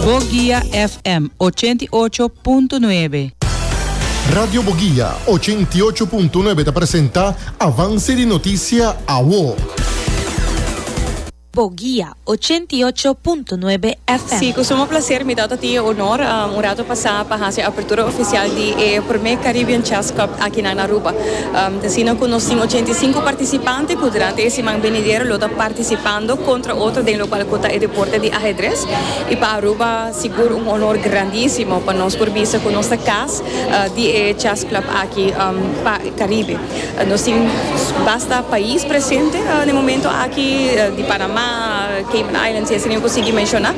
Boguia FM ochenta i ocho punto nuebe. Radio Boguia ochenta i ocho punto nuebe ta presenta Avance di Noticia Awo. Boguia ochenta i ocho punto nuebe FM. Si, cu sumo placer mi tabata tin e honor un rato pasa pa haci e apertura oficial di e prome Caribbean Chess Cup aki nan Aruba. Ta asina cu nos tin ochenta i sinku participante cu durante e siman benidero lo ta participando contra otro den locual cu ta e deporte di Ajedrez. Y pa Aruba sigur un honor grandisimo pa nos por bisa cu nos ta cas di e Chess Club aki pa Caribe. Nos tin basta pais presente na e momento aki, di Panama, Cayman Islands y asina yo cu sigui menciona.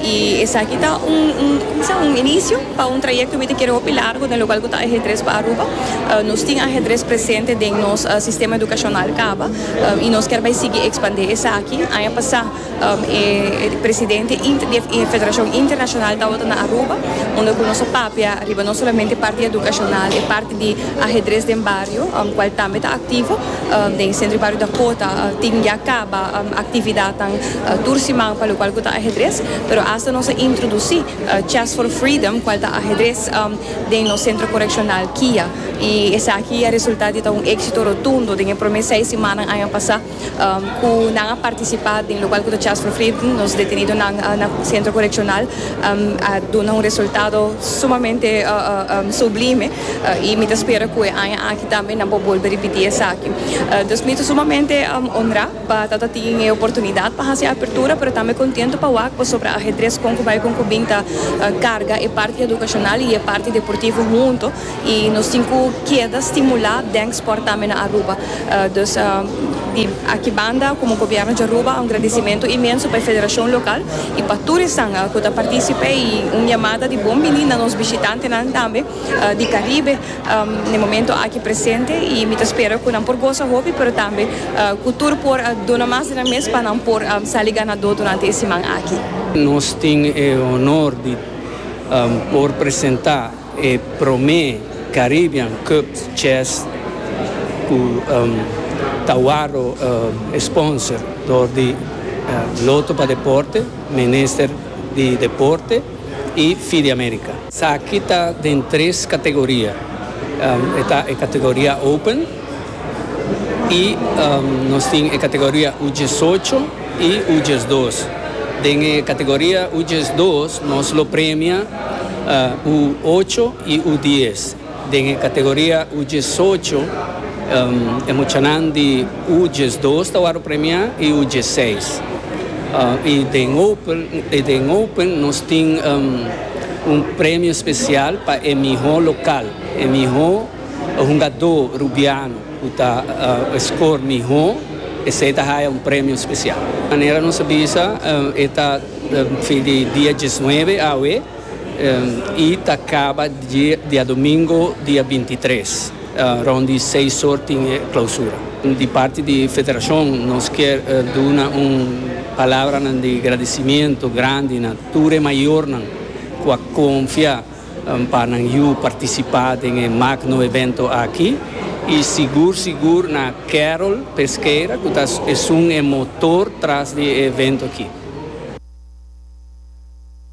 Y esaki ta un, como se dice, un inicio. Pa un trayecto mi ta kere hopi largo den lugar cu ta ajedrez pa Aruba. Nos tin ajedrez presente den nos sistema educacional caba y nos ker bay sigui expande esaki. Aña pasa e presidente di e federacion internacional tabata na Aruba unda cu nos a papia riba no solamente parti educacional e parti di ajedrez den bario cual tambe ta activo. Den centro di bario Dakota tin ya caba actividadnan tur siman pa lo cual cu ta ajedrez pero asta nos a introduci. Chess for Freedom, cual ta ahedres den nos Centro Correccional Kia. Y esaki a resulta di ta un exito rotundo. Den e prome seis simannan aña pasa cu nan a participa den lo cual cu ta Chess for Freedom, nos detenidonan na Centro Correccional a duna un resultado sumamente sublime. Y mi ta spera cu e aña aki tambe nan por bolbe ripiti esaki. Dus mi ta sumamente honra. Pa tata tin e oportunidat pa hasi e apertura pero tambe kontentu pa wak pasobra ajedres kon ku bai kon ku bin ta karga e parti edukashonal i e parti deportivo huntu i nos tin ku keda stimulá den sport tambe na Aruba. Dus di aki banda komo Gobièrnu di Aruba un gradisimentu inmenso pa e federashon lokal i pa tur esnan ku ta partisip'é i un yamada di bon bini na nos bishitantenan tambe di Karibe. Ne momento aki presente y mi ta spera cu nan por goza hopi pero tambe cu tur por a duna mas di nan mes pa nan por sali ganador durante e siman aki. Nos tin e honor di por presenta e prome Caribbean Cup Chess cu ta waro sponsor door di Lotto pa Deporte, Minister di Deporte. i Fi di America. Esaki ta den tres kategoria. E ta e kategoria Open i nos tin e kategoria U diesocho i U diesdos. Den e kategoria U diesdos nos lo premia U ocho i U dies. Den e kategoria U diesocho, e muchanan di U diesdos ta wòrdu premiá i U dieseis. I den Open, i den Open nos tin un premio spesial pa e mihó lokal, e mihó hungadó rubiano ku ta skor mihó, esei ta haya un premio spesial. Manera nos a bisa e ta fin di dia diesnuebe awe. I ta kaba diadomingo dia binti i tres. Rond di seis or tin e klausura. Di parti di federashon nos kier duna un palabranan di gradisimentu grandi na tur e mayornan ku a konfia pa nan yu partisipá den e magno evento aki. I sigur sigur na Carol Pesqueira ku ta esun e motor tras di e evento aki.